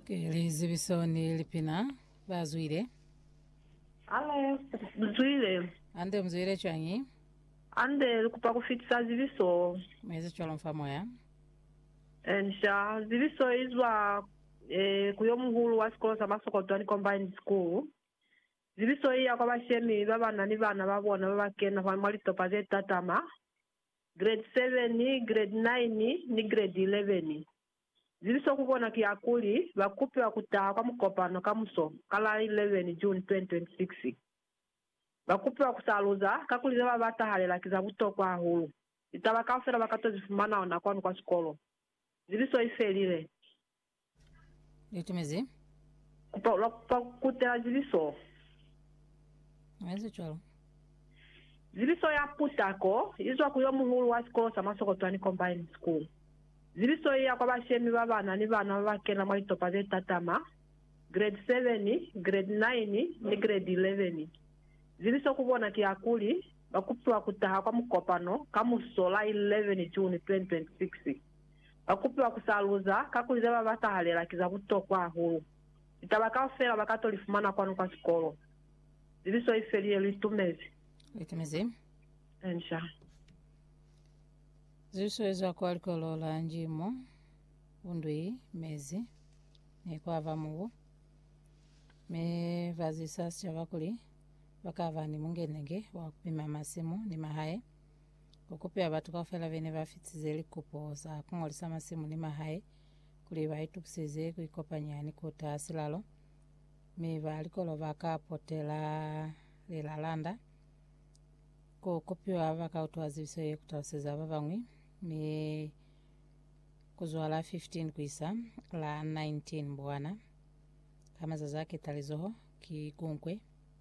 Ke lizibiso ni lipina ba zwile. Alo, mzwile. Ande mzwile cwañi? Ande likupa kufitisa zibiso. Muezi cwalo mfa moya. Ensha, zibiso izwa eh, ku yomuhulu wa sikolo sa Masokotwani Combined School. Zibiso iya kwa bashemi babana ni bana babona babakena mwa litopa zetatama. Grade 7, Grade 9 ni Grade 11. Zibiso ku bona ki ya kuli ba kupiwa ku taha kwa mukopano kamuso ka la 11 June 2026. Ba kupiwa ku saluza kakuli ze ba ba tahalela ki za butokwa hahulu. Litaba kaufela ba ka to zi fumana ona kwanu kwa sikolo. Zibiso i felile. Litumezi. Kupa, lwa kupa kutela zibiso. Ezi cwalo. Zibiso ya putako izwa ku yomuhulu wa sikolo sa Masokotwani Combined School. Zibiso iya kwa bashemi ba bana ni bana ba ba kena mwa litopa ze tatama, Grade 7, Grade 9 ni Grade 11. Zibiso ku bona ki ya kuli, ba kupiwa ku taha kwa mukopano ka musola 11 June 2026. Ba kupiwa ku sa luza, kakuli ze ba batahalela ki za butokwa hahulu. Litaba kaufela ba ka to li fumana kwanu kwa sikolo. Zibiso i feli ye lu itumezi. Lu itumezi. Enca. Zibiso ye zwa kwa likolo la nji mo bu ndu i mezi, ne kwa ba mubu. Mi ba zwisa sicaba kuli ba ka ba ni mungenenge wa ku pima masimu ni mahae. ku kupela batu kaufela be ne ba fitize likupo za ku ngolisa masimu ni mahae kuli ba itukiseze ku ikopanya ni ku taha silalo, mi ba likolo ba ka potela lilalanda. Ku kupiwa ba ka utwa zibiso ye ku taluseza ba bañwi, mi ku zwa la 15 ku isa la 19 Mbwana, ka mazazi a ketalizoho, ki kunkwe.